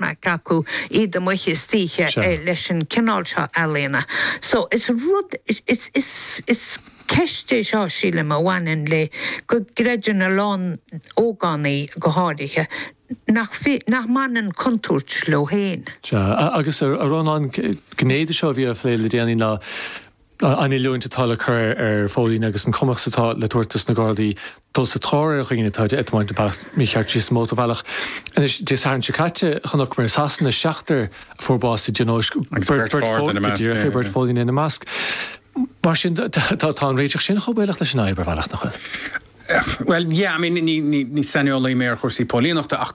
maic acu, iad amuigh istoíche leis an cineál seo ealaíona. So, is rud, is ceist é seo, sílim, a bhaineann le go gcreideann a lán ógánaigh, go háirithe, nach, nach mbaineann contúirt leo féin. Sea. Agus, a Rónáin, gné de seo a bhí á phlé le déanaí ná, an oiliúint atá le cur ar phóilíní agus an cumas atá le tabhairt dos na Gardaí dul sa tóir ar dhaoine atá ag tiomáint bealach mícheart síos an mótarbhealach. Anois, Dé Sathairn seo caite, chonaic mé i Sasana seachtar a fuair bás i dtionóisc, Go díreach é, beirt phóilíní ina measc. Mar sin, tá an réiteach sin chomh baolach leis an fhadhb, ar bhealach, nach bhfuil? Bhuel, yeah, I mean, ní saineolaí mé ar chúrsaí póilíneachta ach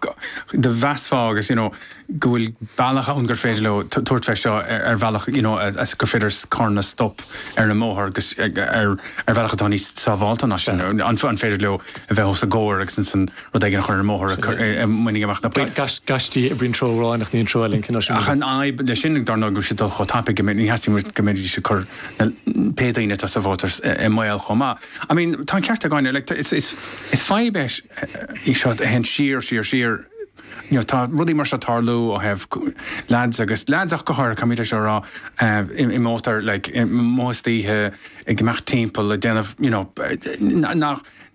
do mheasfá agus, you know, go bhfuil bealach ann gur féidir leo tabhairt fé seo ar bhealach, you know, gur féidir carranna a stop ar an mbóthar agus ar bhealach atá níos sábháilte ná sin. An féidir leo a bheith os a gcomhair agus ansan rud éigin a chur ar an mbóthar a mbainfidh amach na poil? Gaistí a oibríonn treo amháin ach ní an treo eile an cineál sin, is é? Ach an fhadhb le sin, dar ndóigh, go bhfuil siad ag dul chomh tapaidh go mbeidh, ní theastaíonn uait go mbeidís ag cur na, pé daoine atá sa bhóthar i mbaol chomh maith. I mean, tá an ceart ag Áine, like, is fadhb í seo a théann siar, siar, siar, you know, tá rudaí mar seo ag tarlú ó thaobh leaids agus, leaids go háirithe, caithfimid é seo a rá, i mótar, like, amuigh istoíche ag imeacht timpeall ag déanamh, you know,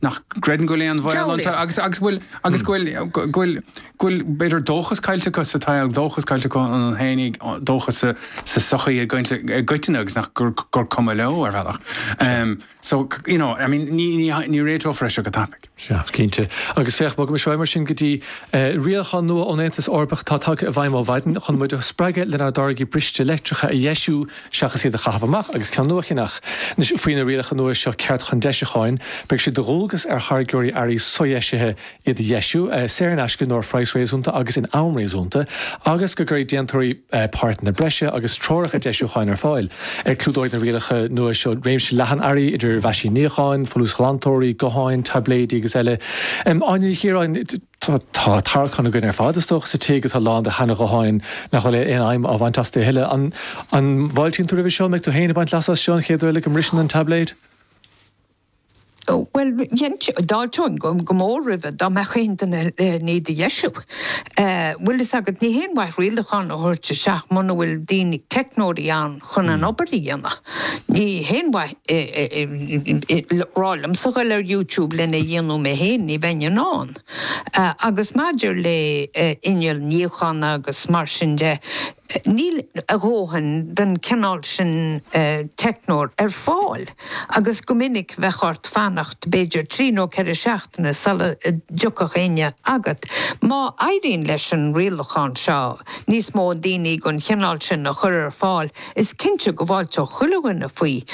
nach gcreideann go bhfuil aon bhaol iontu agus go bhfuil, go bhfuil, go bhfuil b'fhéidir dóchas caillte acu sa tsaol, dóchas caillte acu iontu féin, dóchas sa tsochaí i gcoitinne agus nach gur cuma leo ar bhealach. So, you know, I mean, ní, ní, ní réiteofar é seo go tapaidh. Sea, cinnte. Agus féach, má bhogaimid ar aghaidh mar sin go dtí eh, rialachán nua ón Aontas Eorpach atá tagtha i bhfeidhm ó mhaidin chun muid a spreagadh lenár dtáirgí briste leictreacha a dheisiú seachas iad a chaitheamh amach agus ceann nua a cheannach. Anois, faoi na rialacha nua seo, ceart chun deisiúcháin, beidh sé de dhualgas ar tháirgeoirí earraí sodheisithe iad a dheisiú, saor in aisce nó ar phraghas réasúnta agus in am réasúnta, agus go gcuirfidh déantóirí páirteanna breise agus treoracha deisiúcháin ar fáil. Clúdóidh na rialacha nua seo réimse leathan earraí, idir mheaisín níocháin, folúsghlantóirí, gutháin, taibléidí agus eile. Áine Ní Chiaráin, Tá tarraiceán againn ar fad, is dócha, sa tigh atá lán de sheana-ghutháin nach bhfuil aon fheidhm á bhaint astu a thuilleadh. An bhfáiltíonn tú roimhe seo? An mbeidh tú féin ag baint leasa as seo an chéad uair eile go mbriseann an taibléad? Bhuel, d'fháilteoinn go mór roimhe dá mbeadh aon duine lena ndeisiú. Bhfuil fhios agat, ní haon mhaith rialacháin a thabhairt isteach muna bhfuil daoine, teicneoirí ann chun an obair a dhéanamh. Ní haon mhaith rá liomsa dul ar YouTube lena dhéanamh mé féin, ní bheinn in ann. Agus maidir le inneall níochána agus mar sin de, Níl a dhóthain den chineál sin teicneoir ar fáil agus go minic bheadh ort fanacht b'fhéidir trí nó ceithre seachtaine sula dtiocfadh éinne agat. Má éiríonn leis an rialachán seo níos mó daoine den chineál sin a chur ar fáil is cinnte go bhfáilteodh chuile dhuine faoi.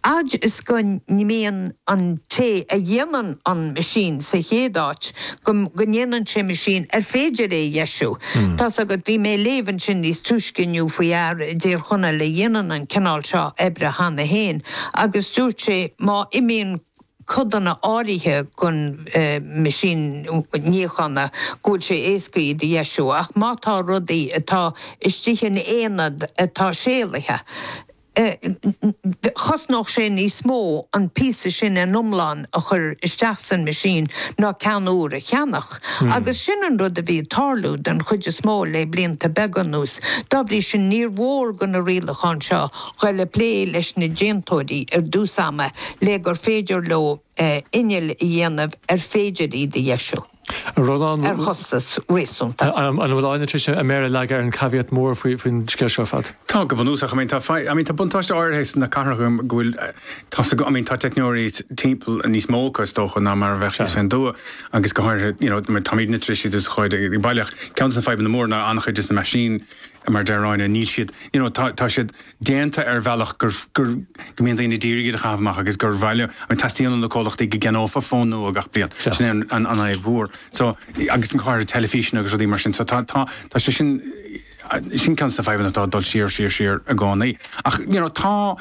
fhad is go mbíonn an té a dhéanann an meaisín sa chéad áit, go ndéanann sé meaisín ar féidir é a dheisiú. Tá's agat, bhí mé ag léamh ansin níos túisce inniu faoi fhear i dTír Chonaill a dhéanann an cineál seo oibre cheana féin agus dúirt sé má imíonn codanna áirithe den meaisín níocháin go bhfuil sé éasca iad a dheisiú ach má tá rudaí atá istigh in aonad atá séalaithe, chosnódh sé níos mó an píosa sin ina iomlán a chur isteach san meaisín ná ceann úr a cheannach. Agus sin an rud a bhí ag tarlú den chuid is mó le blianta beaga anuas. Dá bhrí sin níor mhór do na rialacháin seo a ghoil ag plé leis na déantóirí ar dtús ama le gur féidir leo innill a dhéanamh ar féidir iad a dheisiú. An raibh an. ar chostas réasúnta. An bhfuil Áine tar éis a méar a leagadh ar an caveat mór faoin scéal seo ar fad? Tá, go bunúsach. I mean tá fadh, I mean tá buntáiste áirithe sna cathracha go bhfuil, tá's agat, I mean tá teicneoirí timpeall níos mó acu is dócha ná mar a bheadh thíos fé an dtuath agus go háirithe you know mar táimid na trisí de sa chuid i i baile ach ceann de na fadhbanna mór ná an-chuid de na meaisín mar deir Áine níl siad you know tá tá siad déanta ar bhealach gur, gur, go mbíonn daoine ag iarraidh iad a chaitheamh amach agus gur bhuel, go dteastaíonn ó na comhlachtaí go gceannófá fón nua gach bliain. Sure. Sin é an, an, an fhadhb mhór. So, agus an cár, ar teilifíseanna agus rudaí mar sin. So tá, tá, tá sé sin, sin ceann de na fadhbanna atá ag dul siar, siar, siar i gcónaí. Ach, you know, tá,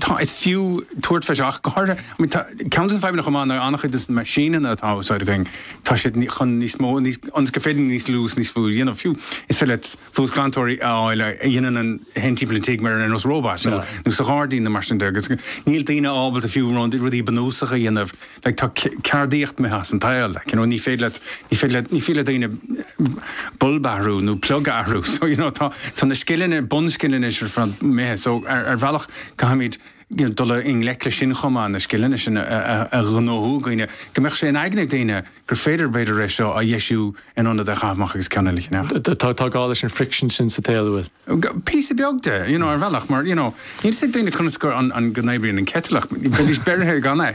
tá, is fiú tabhairt fé seo ach go háirithe, I mean, tá, ceann de na fadhbanna chomh maith ná an-chuid de na meaisíneanna atá á úsáid againn, tá siad ní, chun níos mó, níos, ionas gur féidir níos lú is níos, you know, fiú, is féidir leat, folúsghlantóirí a fháil a dhéanann an timpeall an tigh mar ar nós róbait nó sa ghairdín nó mar sin de agus níl daoine ábalta fiú rudaí bunúsacha a dhéanamh like tá ceardaíocht imithe as an tsaol like you know ní féidir leat ní féidir leat ní féidir le daoine bulb a athrú nó plug a athrú so you know tá tá na scileanna bunscileanna sin imithe so ar bhealach caithfimid dul i ngleic leis sin chomh maith, na scileanna sin a ghnóthú i gcaoi is go mbeadh sé in aigne ag daoine gur féidir, b'fhéidir, é seo a dheisiú in ionad é a chaitheamh amach agus ceann eile a cheannach. Tá gá leis an friction sin sa tsaol, an bhfuil? Píosa beag de, you know, ar bhealach, mar, you know, níl fhios ag daoine conas go, an, go n-oibríonn an kettle ach bheidís beirthe gan é.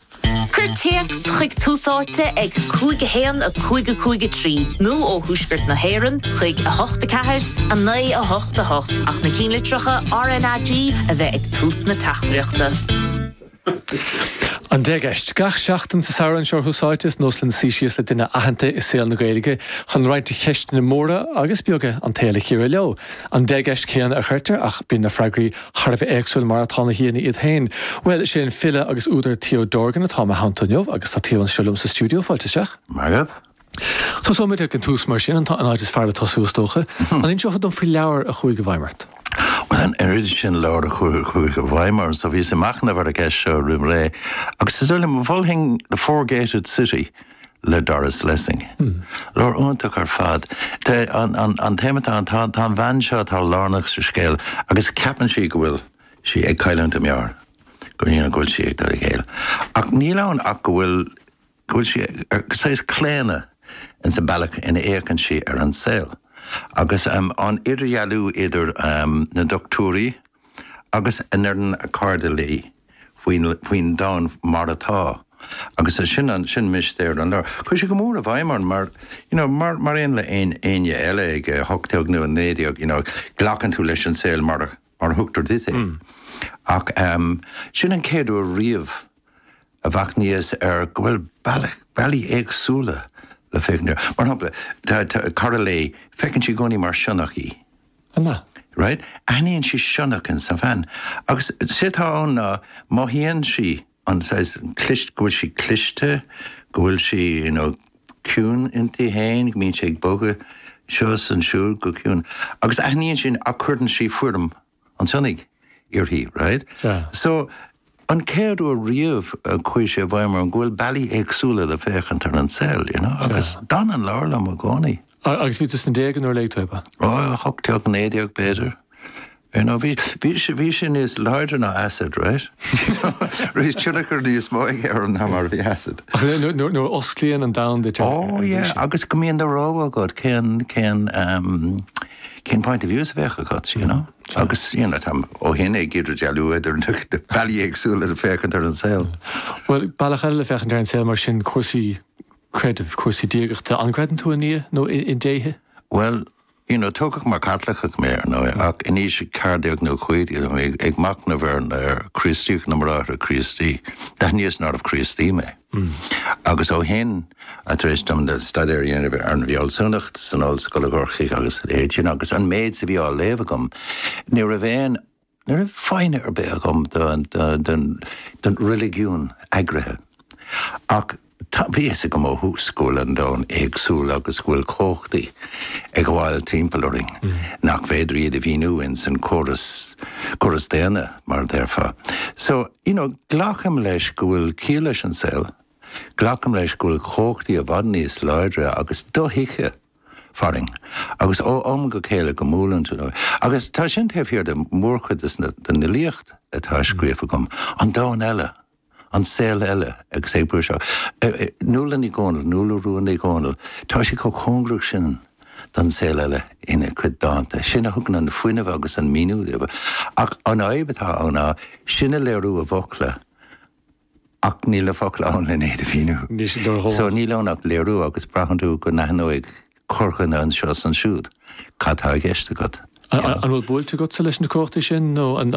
Cuir téacs chuig Tús Áite ag 5 1 5 5 3 nó ó Thuaisceart na hÉireann chuig 8 4 9 8 8 ach na cinnlitreacha RNAG a bheith ag tús na teachtaireachta. An Deich gCeist. Gach seachtain sa samhradh anseo ar Thús Áite, is nós linn suí síos le duine aitheanta i saol na Gaeilge chun roinnt de cheisteanna móra agus beaga an tsaoil a chíoradh leo. An deich gceist chéanna a chuirtear ach bíonn na freagraí Thar a bheith éagsúil mar atá na haíonna iad féin. Bhuel, sé an file agus údar Theo Dorgan atá i mo theannta inniu agus tá Theo anseo liom sa stiúideo, fáilte isteach. Maith agat. Tosóimid ag an tús mar sin, an áit is fearr le tosú is dócha. An inseofá dom faoi leabhar a chuaigh i bhfeidhm ort? Bhuel, an oiread sin leabhar a chuaigh i bhfeidhm orm, so bhíos ag machnamh ar an gceist seo roimh ré agus is dóigh liom, mholfainn The Four Gated City. le Doris Lessing. Leabhar iontach ar fad. An téama atá ann, tá an bhean seo atá lárnach sa scéal agus ceapann sí go bhfuil sí ag cailliúint a meabhair, go bhfuil sí ag dul i gcéill. Ach níl ann ach go bhfuil, go bhfuil sí, saghas claonadh ins an bealach ina fhéachann sí ar an saol. Agus an idirdhealú idir na doctúirí, agus a ndeireann a cairde léi faoin domhan mar atá agus sin mistéir an leabhair. Chuaigh sé go mór i bhfeidhm orm mar you know mar aon le éinne eile ag 18 nó 19 you know glacann tú leis an saol mar a thugtar duit é ach sin an chéad uair riamh a mhachnaíos ar go bhfuil bealaí éagsúla le féachaint ar mar shampla tá cara léi feiceann sí i gcónaí mar sionnach í. An ea? Right, aithníonn sí sionnach in sa bhean agus sé atá ann ná mothaíonn sí an saghas cliste, go bhfuil sí cliste, go bhfuil sí you know ciúin inti fhéin, go mbíonn sé ag bogadh seo is ansiúd go ciúin agus aithníonn sí ach cuireann sí foirm an tsionnaigh uirthi, right? Sea. So. an chéad uair riamh a chuaigh sé i bhfeidhm orm go bhfuil bealaí éagsúla le féachaint ar an saol, you know, agus d'fhan an leabhar liom i gcónaí. Agus bhí tú sna déaga nuair a léigh tú é, ab ea? Ó, a hocht déag, naoi déag b'fhéidir. You know, bhí, bhí, bhí sé níos láidre ná acid, right? Bhí tionchar níos mó aige orm ná mar a bhí acid. Ach nuair a osclaíonn an domhan duit. Ó, yeah, agus go mbíonn do rogha agat cén, cén, cén point of views a bheadh agat, you know? Agus, you know, táim ó shin ag idirdhealú idir na bealaí éagsúla le féachaint ar an saol. Bhuel, bealach eile le féachaint ar an saol mar sin, cúrsaí creidimh, cúrsaí diagachta. An gcreideann tú i nDia nó i ndéithe? Bhuel, you know, tógadh mar Chaitliceach mé, ar ndóigh, ach in aois a ceathair déag nó a cúig déag, bhí mé ag machnamh ar Chríostaíocht na mBráithre Críostaí. D'aithníos nárbh Críostaí mé. Uhm. Agus ó shin, tar éis dom staidéar a dhéanamh ar an bhfealsúnacht san ollscoil i gCorcaigh agus a leithéid sin, agus an méid a bhí á léamh agam, ní raibh aon, ní raibh foighne ar bith agam don reiligiún eagraithe. Ach tá, bhí a fhios agam ó thús go bhfuil an domhan éagsúil agus go bhfuil cumhachtaí ag gabháil timpeall orainn nach féidir iad a mhíniú ins an gcóras, córas daonna, mar a déarfá. So. You know, glacaim leis go bhfuil ciall leis an saol, glacaim leis go bhfuil cumhachtaí i bhfad níos láidre agus dothuigthe farainn agus ó am go chéile go mbuaileann tú leo. Agus tá sin taobh thiar de mhórchuid den fhilíocht atá scríofa agam, an domhan eile, an saol eile agus é ag brú isteach. Nuala Ní Dhomhnaill, Nuala Rua Ní Dhomhnaill, tá sí chomh cóngarach sin don saol eile ina cuid dánta. Sin a thugann an fuinneamh agus an maoiniú di. Ach an fhadhb atá ann ná sin a léiriú i bhfocla ach níl na focla ann len iad a mhíniú. Níl siad leor dhomhain. So níl ann ach léiriú agus braitheann tú go n-aithneoidh corrdhuine anseo is ansiúd cad tá i gceist agat, you know. An bhfuil buailte agatsa leis na cumhachtaí sin nó an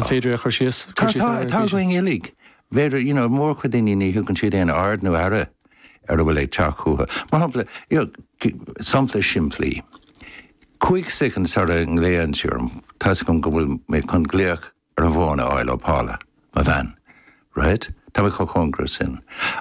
féidir é a chur síos? Tá, tá, tá againn uilig. B'fhéidir, you know, mórchuid daoine ní thugann siad aon aird nó aire ar a bhfuil ag teacht chucu. Mar shampla, you know, sampla simplí, cúig soicind sara nglaonn sí orm, tá 'fhios agam go bhfuil mé chun glaoch ar an bhfón a fháil ó Paula, mo bhean, right? Tá mé chomh cóngarach sin.